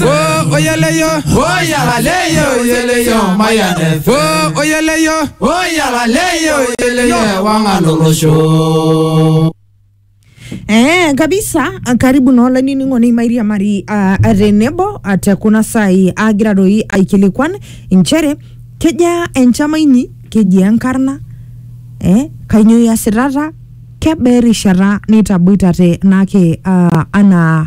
Next. Oh, oyeleyo. Oh, yalaleyo, oyeleyo, maya next. Oh, oyeleyo. Oh, yalaleyo, oyeleyo, wangalolosho. Eh, kabisa karibu na olainining'oni mairiamari uh, tenebo uh, te kuna saai aagira doi aikilikuan inchere kejaa enchama inyi kejia enkarna eh, kainyoo iasitata kebaa erishata nitaboitate naake uh, anaa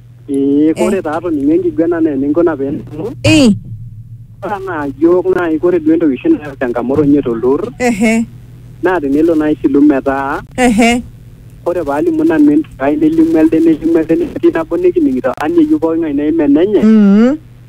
Ee kore taa atoningo enkiguena naa eninkuna pee ning'amu. Eh, Ore anaa iyiook naai kore duo entoki oshi nayau changamoto ninye tolturrur ehe, naa tenelo naai silu metaa ehe, ore paalimu nanu entumo ai nelimu elde nelimu elde netii nabo nikining'ito amu meyieu pooki ng'ae neimin enenye mm,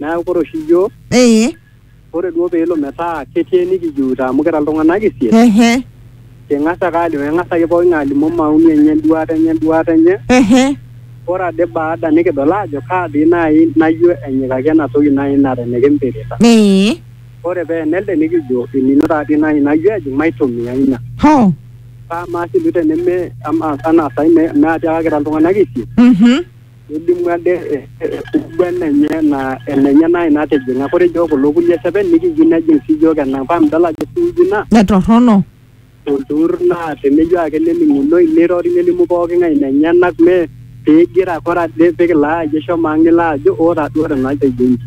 Neaku kore oshi iyiook, ee kore duo peelo metaa ketii enikijiutaa amu kira iltung'anak isiet, ehe king'as ake alimu, eng'as ake pooki ng'ae alimu maoni enye, enduaata enye, enduaata enye. ehe Ore ade baada nikidol aajo kaa dii naai nayio enyikaki ena toki naai nara enikimpirita. ee Ore pee ena elde nikijo enino taa dii naai nayio ejing maitumia ina. hoo Amaa sii duo teneme, amaa anaa saai me atiaka kira iltung'anak isiet. mhm Nelimu ade enkiguana enye naa enenye naa ina natijing'a. Ore ijo kulo kulie seven nikiyieu nejing sii iyiook enang. Paa midol ajo esuuji ina? Mme torrono. Olturrur naa teneyieu ake nening'unoi neirori nelimu pooki ng'ae inenyenak mme pee igira ake ore ade pee kilo aayie shomo ang nilo ajo oo taa duo tenatejo inji.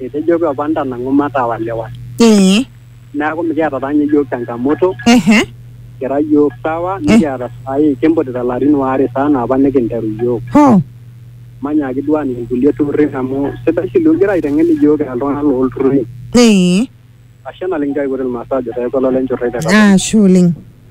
Etejoki opa ntanang'u matawaliwal. neaku mikiata taa ninye iyiook changamoto ehe kira iyiook sawa nikiata saai kimputita ilarin waare saa naa apa nikinteru iyiook ho manyaaki duo aaning inkulie turrurri amu sidai sii duo igira aiteng'en iyiook kira iltung'anak loolturrurri ee ashe naleng nchoo aipot ilmaasai ajo peeku olole nchorroi te kaponaa. ashe oleng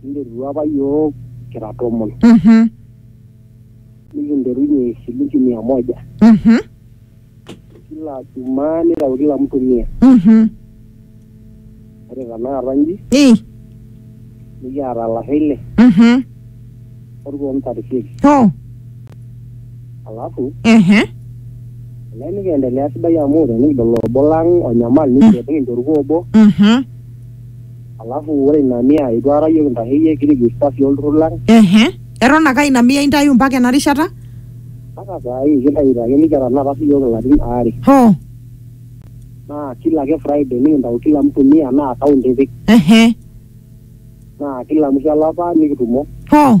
Kinterutua apa yiok kira tomon. Mhm. Nikinterunye esilinki mia moja. Mhm. Kila jumaa nitau kila mtu mia. Mhm. Ore tanakata nji, Ii. nikiata lasho ile, Mhm. orkuon ntarisieki. Oh. Alafu, Ehe. ele nikiendelea sidai amu tenikidol obo lang onyamal, nikiret nikincho orkuo obo. Mhm. Alafu ore ina mia itu aikata iyiook intasheyie kirigista sii olturrur lang Ehe. Eton ake aa ina mia intayu mpaka ena rishata? mpaka saa hii kintayuto ake nikiata tenakata sii iyiook ilarin aare Hoo. naa kila ake Friday nikintau kila mtu mia naa account ipik Ehe. naa kila mwisho olapa nikitumo. Hoo.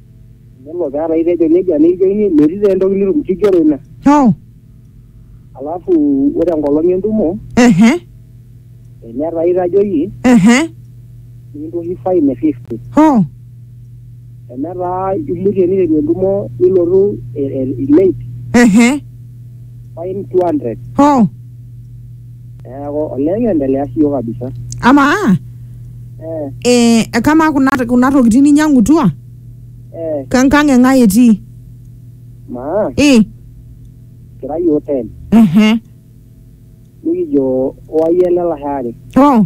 Nelo peeta itejo nejia neijoni metii taa entoki nitum kigero ina. Nyoo? Alafu ore enkolong entumo Ehe. tenetaa itajoyie Ehe. nikintoki fine e fifty. Hoo. Tenetaa imutie niteru entumo nilotu eh, eh, late Ehe. fine two hundred. Hoo. Neeku olee kiendelea siyiok kabisa. Amaa Eh, eh, kamaa kuna, kuna tokitin ninyang'utua eh, kenkang e ng'ae etii? maa Eh, kira yiok ten. ehe. Nikijo wayie ele lashe are. Oh,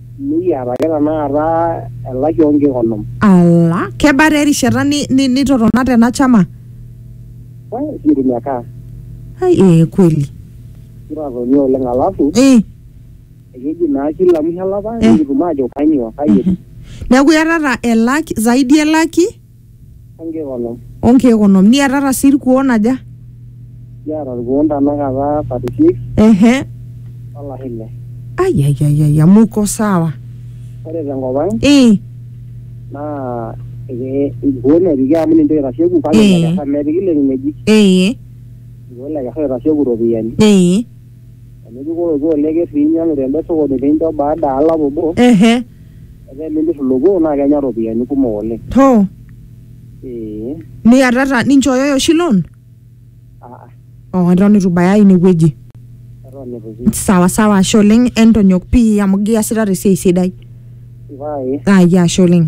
Nikiata ake tenakata elaki oo nkeek onom. Ala, kebaa taa erishata ni, ni, nitotona tena chama? Eh, sijui mekaa. Ai, ee kweli. Kitatonie oleng alafu Eh, ekeji naa kila mwisho olapa Eh. nikitum aajo kanyoo, kai etiu. neeku iatata elaki, zaidi elaki? onkeek onom. o nkeek onom niatata sii irkuon aja Kiata irkuon tanakata 36 ehe olashe ile. ayayayaya muko sawa Ore tenkop ang ee naa eke- irkuon epiki amu ninche oitasheku kake Eh. lekesa mepiki leng'ueji. ee Irkuon lekesa oitasheku iropiyiani. ee Enijikoloku oleker pee inyiang'u tende sokoni pee incho baada e olapa obo, ehe etaa elimir ilo kuo naa kenya iropiyiani kumok oleng. hoo Ee, niatata ninchooyoyo oshi loan aa, oo eton itu ibaya inewueji eton itu pii. sawa sawa ashe oleng entonyok pii amu giasitata esiai sidai Vai, ah, ya ashe oleng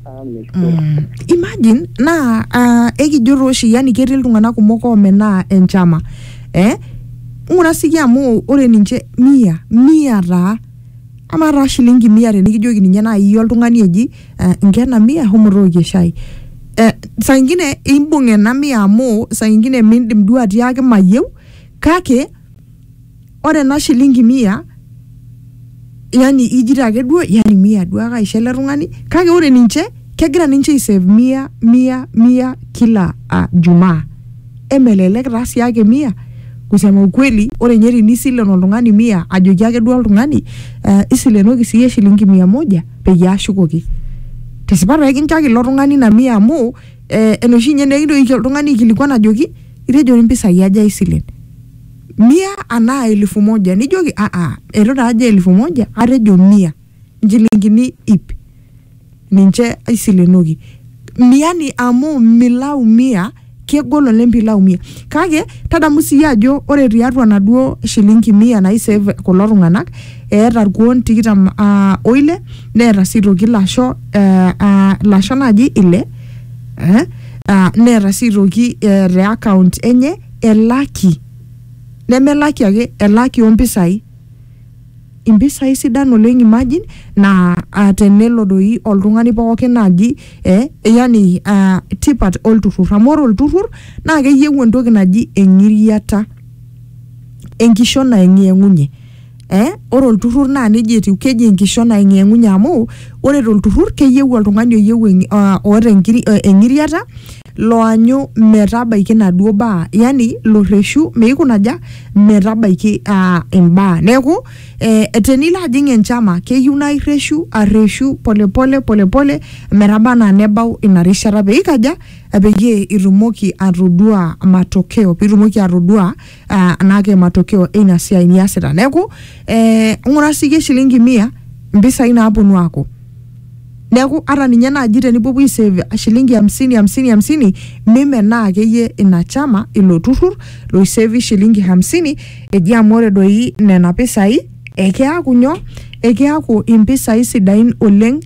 amen. mm. imagine naa ah, ekijurru oshi yani ketii iltung'anak kumok oomenaa enchama eh? ng'ura siki amu ore ninche mia mia taa amaa taa shilingi mia tenikijoki ninye naaji iyie oltung'ani eji eh, nkena mia homo tookie shai eh, saa ingine imbung ena mia amu saa ingine mindim duo atiaki mayieu kake ore ena shilingi mia yani ijito ake duo yani mia duo ake aisho ele tung'ani kake ore ninche kegira ninche aisave mia mia mia kila uh, jumaa emelelek taa sii ake mia kusema ukweli ore ninye tinisilen oltung'ani mia ajoki ake duo oltung'ani uh, isilenoki siyie shilingi mia moja peyie ashukoki tesipa taa ekinchaki ilo tung'ani ina mia amu eh, enoshi ninye nekintoki oltung'ani aikilikuan ajoki itejo impisai aja isilen mia anaa elfu moja nijoki aa eitu taa ajo elfu moja atejo mia nchilingini ip ninche aisilenoki miani amu milau mia kegol oleng pilau mia kake tadamu siyie ajo ore tiatua naduo shilingi mia nai save kulo tung'anak eeta irkuon tikitam uh, oile neeta sii toki ilasho eh, uh, ilasho naaji ile eh, uh, neeta sii toki eh, te account enye elaki nemelaki ake elaki ompisai impisai sidan oleng imagine naa uh, tenelo doi oltung'ani pookin naaji eh, yani uh, tipat olturrur amu ore olturrur naa keyieu entoki naji eng'iriata enkishon naeng'iyeng'unye eh, ore olturrur naa neji etiu keji enkishon aing'eng'unye amu ore tolturrur keyieu oltung'ani oyieu eng- ah, oota enkiri- eh, eng'iriata loanyu metabaiki naduo baa yani lorreshu meikunaja metabaiki ah, imbaa neeku eh, tenilo ajing enchama keyieu naa irreshu arreshu polepole polepole metaba anaa nebau ina rishata peikaja peyie itumoki atodua matokeo pitumoki atodua ah, anaake matokeo eina siai niasita neeku eh, ng'ura siyie shilingi mia mpisai naaponu aaku neeku ata ninye naaji tenipuopuo aisave shilingi hamsini hamsini hamsini mimenaa akeyie ina chama ilo turrur loisevi shilingi hamsini eji amu ore doi nena pisai ekeaku nyoo ekeaku impisai sidain oleng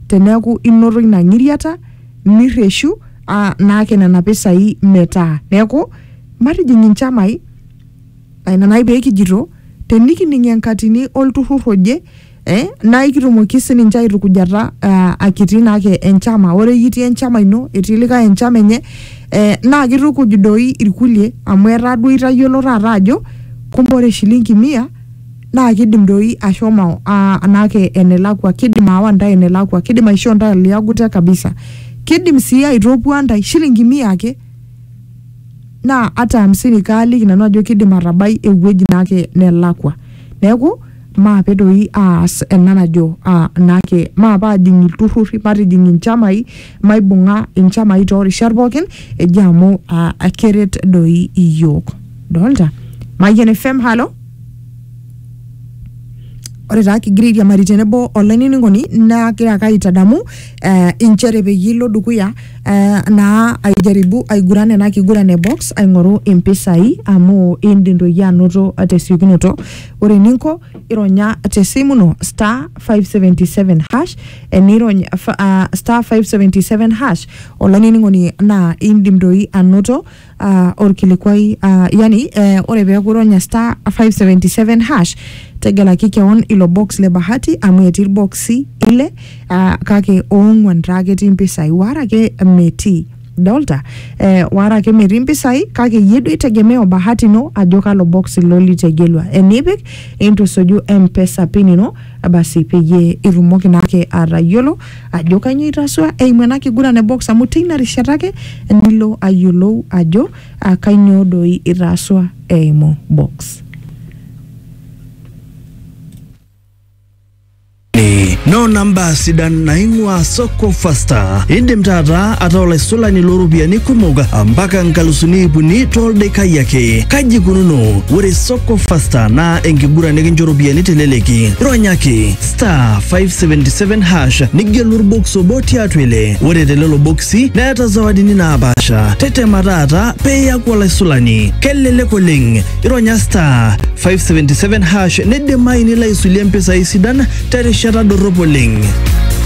teneeku inoto ina ng'iriata nirreshu ah, naake nena pisai metaa neeku Matijing inchamai, naa ina nai pee kijito tenikining enkatini olturrur oje eh, naa ikitumoki sininche aitukujata eh, akitii naake enchama. Ore iyie itii enchama ino, etii likae enchama enye eh, naa kitukuj doi irkulie amu etaa duo itayiolo taata ajo kumbe ore shilingi mia naa kidim doi ashomo ah, naake enelakua, kidim aawa ntae enelakua, kidim aishoo ntae liagu te kabisa. Kidim sii aitopua ntae shilingi mia ake. naa ata hamsini kaaliki nanu ajo kidim atabai ewueji naake nelakua neeku maape doi aas ena najo uh, naake maape ajing ilturrurri matijing inchamai maibung'a inchamai torishat pookin eji amu uh, keret doi iyiook dolta Mayian FM halo Ore taa kigira airiamari tenebo olainining'oni nagira ake aitadamu eh, inchere peyie ilo dukuya eh, naa aijaribu aiguran ena kiguran e box aing'oru impisai amu indim toi iyie anoto tesiokinoto. Ore eninko ironya tesimu ino star 577 hash enirony ah, star 577 hash olainining'oni naa indim toi anoto uh, orkilikuai uh, yani uh, ore peeku ironya star 577 hash tegelaki kewon ilo box le bahati amu etii irboksi ile uh, kake oong'uan taa ketii impisai wara ake metii dolta eh, wara ake metii impisai kake iyie duo itegemea o bahati ino ajo kalo box ilo litegelua enipik intusuju mpesa pin ino basi peyie itumoki naake atayiolo ajo kainyoo itasua eimu ena kiguran e box amu teina rishata ake nilo ayiolou ajo ah, kainyoo doi itasua eimu box. noo namba sidan naing'ua soko fasta indim taata ataa olaisulani looropiyiani kumok mpaka nkalusuni ipuni toldekai ake kaji ikununo ore soko fasta naa enkiguran nikincho ropiyiani teleleki ronya ake star 577 hash nigelu orbox obo tiatua ile ore telelo boksi neeta zawadini naapaasha tetema taata pee iyaku olaisulani kelelek oleng ironya star 577 hash neidimayu nilo aisulie mpisai sidan terishata dorrop oleng